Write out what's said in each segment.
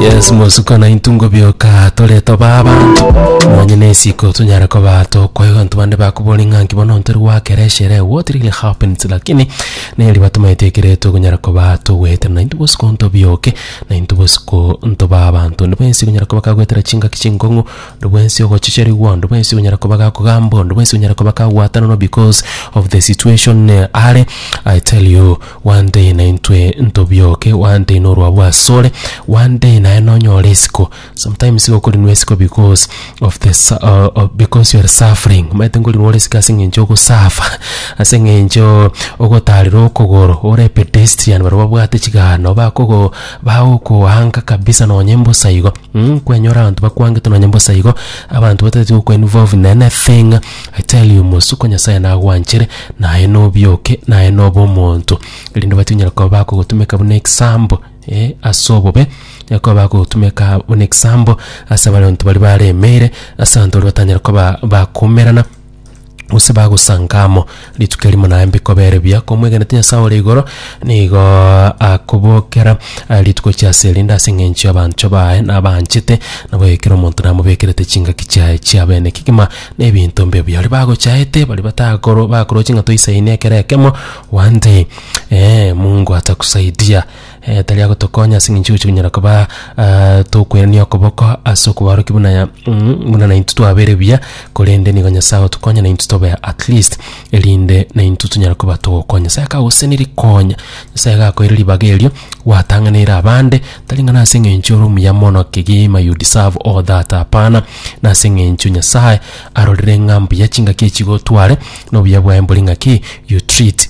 yes mosuko na intungo bioka tore toba abantu nonye na esiko tunyare koba tokwayo bantu bande bakobori ng'a nki bono ntari gwakera eshere what really happens lakini neri batumaete ekere togonyara koba togwetera na intu bosuko ntobioke na intu bosuko ntoba abanto onde bwensi ogonyara koba kagwetera chingaki chinkong'u onde bwensi ogochicherigwa onde bwensi ogonyara koba gakogambwa onde bwensi ogonyara koba kagwatananwa because of the situation eh, are i tell you Gwanteine naintwe ntobioke, gwanteine orwabu asore, gwanteine aye nonyore isiko. Sometimes igo okorinwa isiko because of the su- o- o- because you are suffering. Omanyete nkorinwa ore isiko ase eng'encho ogosuffer, ase eng'encho ogotarire okogoro, ore pedestrian baria babwate chigano bakogo bagokoanga kabisa nonye mbosa igo, mm kwenyora abanto bakwangete nonye mbosa igo, abanto batagete goku involve in anything. I tell you, mosuko Nyasaye nagwanchere, naye nobioke, naye nobe omonto, erinde obati onyare koba bakogotumeka buna example, eh, ase obobe, onyare koba bagogotumeka buna example ase abaronto baria baremeire, ase abanto baria batanyare koba bakoumerana, gose bagosanga amo. Rituko erimo naye mbikobere biya komwegenete Nyasae ore igoro, nigo akobokera eh, rituko chiase erinde ase eng'encho y'abanto baye nabanchete, nabo ekero omonto namobekerete chingaki chiaye chia bene kegima na ebinto mbe biaye. Baria bagochaete, baria batagoro bakoroche ng'a toisainie ekero ekemo, one day eh, Mungu atakusaidia. Eh, tari agotokonya ase engencho gochia konyara koba ah, tokwerania okoboko ase okobaorokia buna ya- mm, buna naintwe twabere buya korende nigo nyasae otokonya naintwe tobe at least erinde naintwe tonyara koba togokonya nyasae akagosenirie konya nyasae gakoire ribaga erio gwatang'aneire abande tari ng'a nase engencho ore omuya mono kegima you deserve all that hapana nase engencho nyasae arorire ng'a mbuya chingaki echigotware na obuya bwaye mbore ng'aki you treat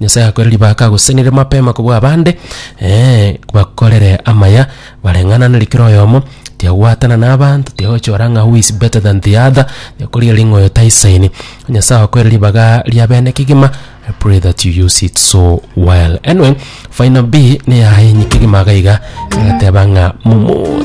Nyasae akoere ribaaka agosesenere mapema kobua abande, ee, bakorere amaya bareng'ananeri kera oyomo, tiyagwatana na abanto, tiyagochora ng'a who is better than the other, tiyakorigereria ng'a oyo taisaini. Nyasae akoere ribaga ria bene kegima, I pray that you use it so well. Anyway, final B neyaye inye kegima iga iga, egateba ng'a momo